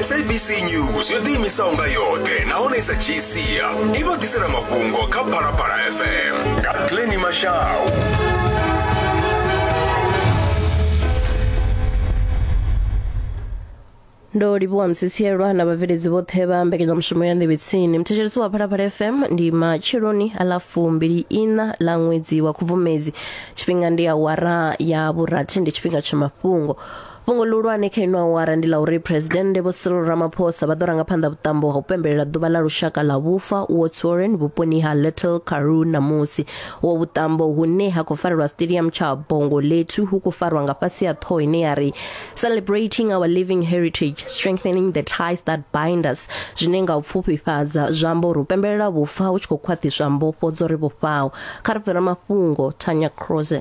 sabc news yo ḓiimisaho nga yoṱhe nahone i sa dzhii sia i vha ḓisela mafhungo kha phalaphala fm nga pleni mashau ndo livhuwa msisielwa na vhabveledzi vhoṱhe vha mbekanyamushumo ya nḓevhetsini muthetshelesi wa phalaphala fm ndi matsheloni a ḽa fumbili ina ḽa ṅwedzi wa khubvumedzi tshifhinga ndi awara ya vhurathi ndi tshifhinga tsha mafhungo fhungo ḽihulwane kha ino awara ndi ḽa uri phuresidennde vho cyril ramaphosa vha ḓo ranga phanḓa vhuṱambo ha u pembelela ḓuvha ḽa lushaka ḽa vhufa words warren vhuponi ha little caru ṋamusi wo vhuṱambo hune ha khou farelwa stadium tsha bongo lethu hu khou farwa nga fhasi ya ṱhoho ine ya ri celebrating our living heritage strengthening the ties that bind us zwine nga u pfufhifhadza zwa amba uri u pembelela vhufa hu tshi khou khwaṱhiswa mbofho dzo ri vhofhaho kha ri bvela mafhungo tanya croze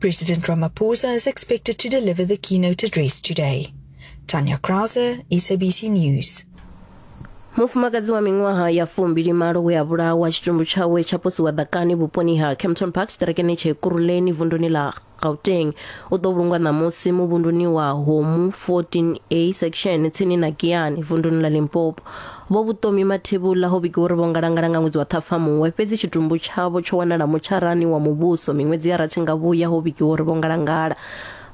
President Ramaphosa is expected to deliver the keynote address today. Tanya Krause, SABC News. mufumakadzi wa miṅwaha ya fumbili malo we a vhulawa tshitumbu tshawe tsha posiwa ḓakani vhuponi ha campton park tshiṱerekeni tsha ekuruleni vunduni ḽa gauteng u ḓo vhulungwa ṋamusi muvhunduni wa homu 14a section tsini na giani vunduni ḽa limpopo Vho Vhuṱomi Mathebula ho vhigiwa uri vho ngalangala nga ṅwedzi wa Ṱhafamuhwe, fhedzi tshitumbu tshavho tsho wanala mutsharani wa muvhuso miṅwedzi ya rathi nga vhuya ho vhigiwa uri vho ngalangala.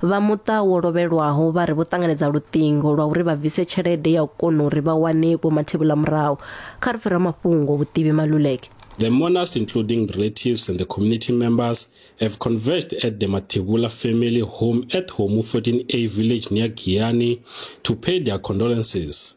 Vha muṱa wo lovhelwaho vha ri vho ṱanganedza luṱingo lwa uri vha bvise tshelede ya u kona uri vha wane Vho Mathebula murahu. Kha ri pfe ramafhungo Vhuṱivhi Maluleke. The mourners including relatives and the community members have converged at the Mathebula family home at Homu 14A village near Giyani to pay their condolences.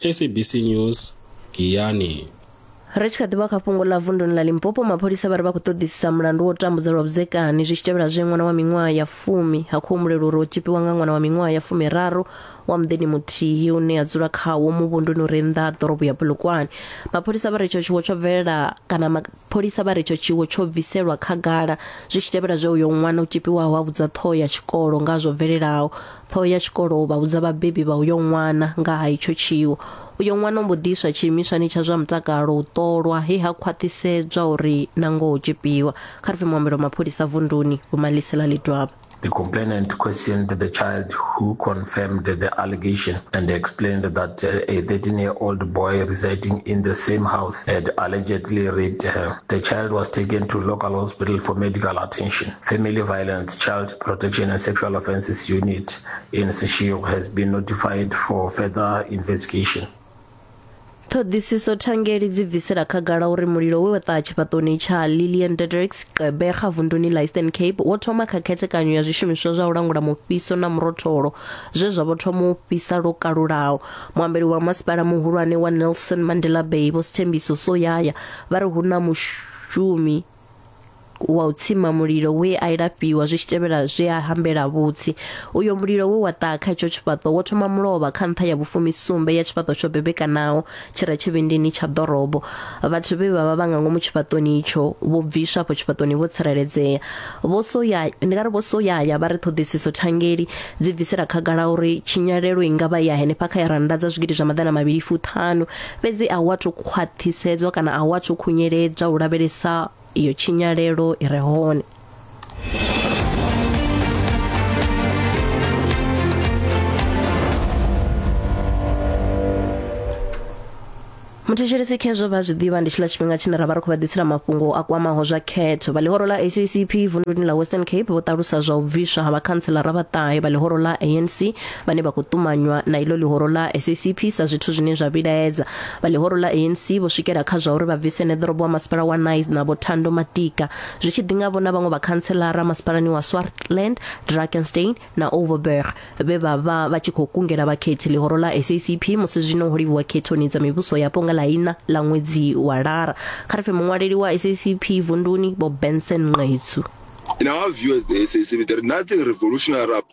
sabc news giyani ri tshi kha ḓivha kha fhungo ḽa vunduni ḽa limpopo mapholisa vha ri vha khou ṱoḓisisa mulandu wo tambudza lwa vhudzekani zwi tshi tevhela zwe ṅwana wa miṅwaha ya fumi ha khou humbulelwa uri o tshipiwa nga ṅwana wa miṅwaha ya fumiraru wa muḓini muthihi une ya dzula khawo muvhunduni uri nnḓa ha ḓorobo ya bulukwane mapholisa vha ri itsho tshiwo tsho bvelela kana mapholisa vha ri itsho tshiwo tsho bviselwa khagala zwi tshi tevhela zwe uyo ṅwana o tshipiwaho a vhudza ṱhoho ya tshikolo nga zwo bvelelaho Ṱhoho ya tshikolo u vha vhudza vhabebi vha uyo ṅwana nga ha itsho tshiwo. Uyo ṅwana o mbo ḓi iswa tshiimiswani tsha zwa mutakalo u ṱolwa he ha khwaṱhisedzwa uri na ngoho o tzhipiwa, kha ri pfi muambeli wa mapholisa vunduni Vho Malisela Ledwaba. The complainant questioned the child who confirmed the allegation and explained that uh, a 13 year old boy residing in the same house had allegedly raped her. The child was taken to local hospital for medical attention. Family violence Child Protection and Sexual Offences Unit in Seshego has been notified for further investigation. ṱhoḓisiso thangeli dzi bvisela khagala uri mulilo we wa ṱaha tshifhaṱoni tsha lillian dedricks qebega vunduni la eastern cape wo thoma kha khethekanyo ya zwishumiswa zwa u langula mufhiso na murotholo zwe zwa vho thoma u fhisa lwo kalulaho muambeli wa masipala muhulwane wa nelson mandela bay vho sithembiso soyaya vha ri hu na mushumi wa u tsima mulilo we a ilafhiwa zwi tshi tevhela zwe a hambela vhutsi uyo mulilo we wa ṱaha kha itsho tshifhaṱo wo thoma mulovha kha nṱha ya vhufumi sumbe ya tshifhaṱo tsho bebekanaho tshi re tshivhindini tsha ḓorobo vhathu vhe vha vha vha nga ngomu tshifhaṱoni itsho vho bviswa afho tshifhaṱoni vho tsireledzea vho soya ndi nga ri vho soyaya vha ri ṱhoḓisiso thangeli dzi bvisela khagala uri tshinyalelo i nga vha ya henefha kha ya randa dza zwigidi zwa maḓana mavhili fuṱhanu fhedzi a hu athu khwaṱhisedzwa kana a hu athu khunyeledzwa u lavhelesa iyo tshinyalelo i re hone muthetshelesi khezwo vha zwi ḓivha ndi tshiḽa tshifhinga tshine ra vha ri khou vha ḓisela mafhungo a kwamaho zwa khetho vha ḽihoro ḽa acp vunḓuni ḽa western cape vho ṱalusa zwa u bviswa ha vhakhantselara vhaṱahe vha ḽihoro ḽa anc vhane vha khou ṱumanywa na iḽo ḽihoro ḽa SACP sa zwithu zwine zwa vhilaedza vha ḽihoro ḽa ANC vho swikela kha zwa uri vha bvise neḓorobo wa masipala wa Nice na Vhothando Matika zwi tshi ḓinga vho na vhaṅwe vhakhantselara masipalani wa Swartland, Drakenstein na Overberg vhe vha vha vha tshi khou kungela vhakhethi ḽihoro ḽa SACP musi zwino ho livhuwa khethoni dza mivhuso yapo nga ḽa ina ḽa ṅwedzi wa lara kha ri pfe muṅwaleli wa SACP vunduni Bob Benson Nqetsu. In our view as the SACP, there is nothing revolutionary about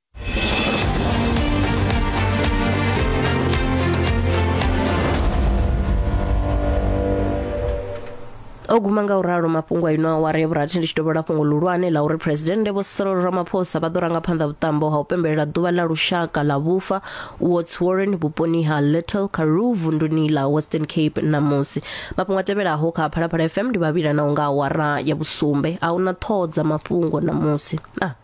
o guma nga u ralo mafhungo a ino awara ya vhurathi ndi tshi dovhela fhungo luhulwane la uri phuresidennde vho cyril ramaphosa vha ḓo ranga phanḓa vhuṱambo ha u pembelela ḓuvha ḽa lushaka ḽa vhufa wards warren vhuponi ha little karoo vunduni ḽa western cape ṋamusi mafhungo a tevhelaho kha phalaphala fm ndi vhavhila na u nga awara ya vhusumbe a huna ṱhoho dza mafhungo ṋamusi ah.